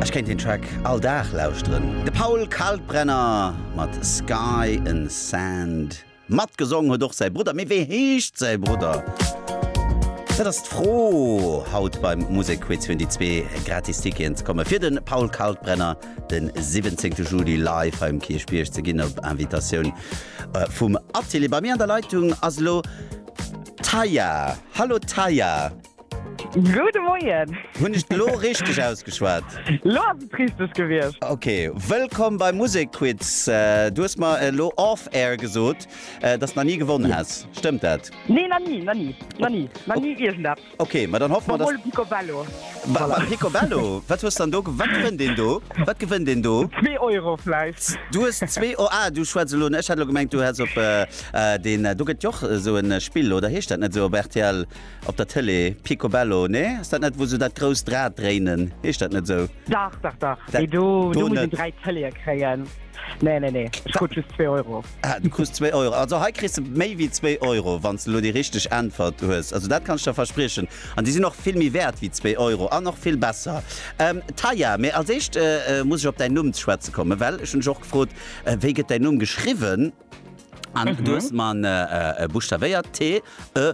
Ech kéint deen Track all Dag lauschteren. De Paul Kalkbrenner mat Sky and Sand. Matgesong huet och säi Brudder, mee wéi heescht säi Brudder? Dat ass d'Fro haut beim Musekquiz fir un déi zwee gratis Ticketen ze kommen, fir de Paul Kalkbrenner de 17 Juli live hei um Kierchbierg ze ginn op Invitatioun vum Atelier. Bei mir an der Leitung ass elo d'Taya. Hallo Taya. Gudde Moien! Hunn ech et elo richteg ausgeschwat? Lo ass et richteg gewiescht. Okay, wëllkomm bei Musekquiz. Du hues mer elo off air gesot, dass na ni gewonnen häss. Stëmmt dat? Nee, na ni, na ni, na ni, na ni iergendeppes. Okay, ma dann hoffe mer, dass. Mol e Picobello. Wa, wa, Picobello? Wat hues dann do ge-? Wat gewënnt een do? Wat gewënnt een do? Zwee Euro vläicht. Du hues zwee Eu-, ah, du schwätz elo, ech hat elo gemengt, du häss op, eh, deen, do gëtt jo och esou en Spill, oder heescht dat net esou op rtl? Op der Tëlee, Picobello, nee? Ass dat net, wou se dat grousst Rad dréinen? Heescht dat net esou? Dach, dach, dach, mee do muss een dräi Tëleeë kréien. Nee, nee, nee, ech krut just zwee Euro. Ah, du krus zwee Euro. Also hei kriss de méi wéi zwee Euro, wann s de elo déi richteg Äntwert hues. Also dat kann ech der verspriechen. An déi sinn och vill méi wäert wéi zwee Euro an och vill besser. Taya, mee als éischt muss ech op däin Numm ze schwätze kommen, well ech hunn dech och gefrot, wéi gëtt däin Numm geschriwwen? An du hues mer buschtavéiert, T, E,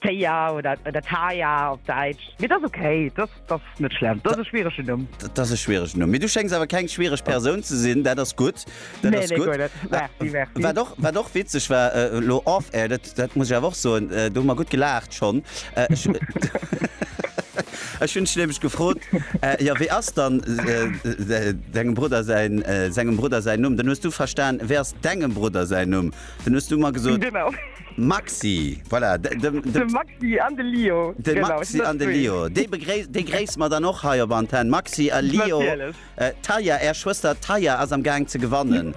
Téia oder oder Taia op Däitsch. Mee dat ass ok, dat dat ass net schlëmm. Dat ass e schwieregen Numm. Dat ass e schwieregen Numm. Mee du schéngs awer keng schwiereg Persoun ze sinn. Dat ass gutt, dat Nee, ass nee, gutt. guer net. Merci, merci. Wat och wat och witzeg war, elo off air, dat dat muss ech awer och soen, do hu mer gutt gelaacht schonn, ech ech hunn dech nämlech gefrot, jo, wéi ass dann dengem Brudder säin sengem Brudder säin Numm? Dann hues du verstan, wéi ass dengem Brudder säin Numm? Dann hues du mer gesot. Genau. Maxi, voilà, de Maxi an de Lio, de Maxi an de Lio, déi begréiss, déi gréisse mer dann och hei op Antenn. Maxi a Lio, d'Taya, är Schwëster Taya ass am Gaang ze gewannen,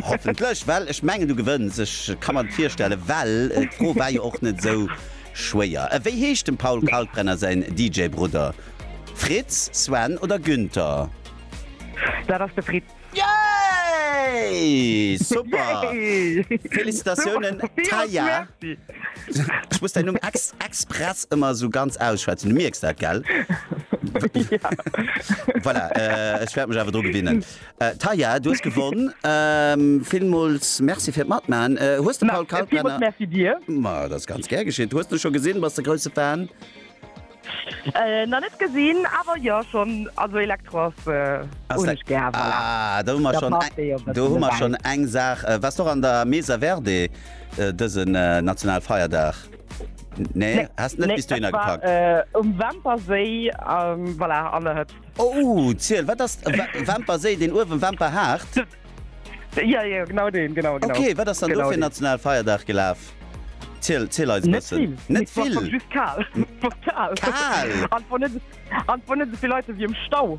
hoffentlech, well ech mengen du gewënns, ech ka mer et virstellen, well d'Fro war jo och net esou schwéier. Wéi heescht dem Paul Kalkbrenner säin DJ-Brudder, Fritz, Sven oder Günther? Dat ass de Fritz. Yay! Super! Felicitatiounen Taya! Ech muss däin Numm ex express ëmmer esou ganz ausschwätzen, du mierks dat, gell? Voilà, ech wäert mech awer dru gewinnen. Taya, du hues gewonn. Villmools Merci fir d'Matmaachen. Hues de Paul Kalkbrenner. Ma dat ass ganz gär geschitt. Hues de scho gesinn? Bass de grousse Fan? Nach net gesinn awer jo schonn also Elektro ass hunn ech gär voilà. Ah do hu mer schonn eng do hu mer schonn eng Saach. Waars de och an der Mesa Verde dësen Nationalfeierdag? Nee has de net bis dohinner gepackt? Nee ech war um Wämperséi voilà an der Hëtzt. Oh ziel wat ass Wämperséi deen uewen Wämperhaart? Ja, ja, genau deen, genau, genau. Okay, wat ass dann do fir en nationale Feierdag gelaf? Ziel, ziel eis e bëssen. Net vill, et war just kal. Kal? An et war net esou vill Leit ewéi am Stau.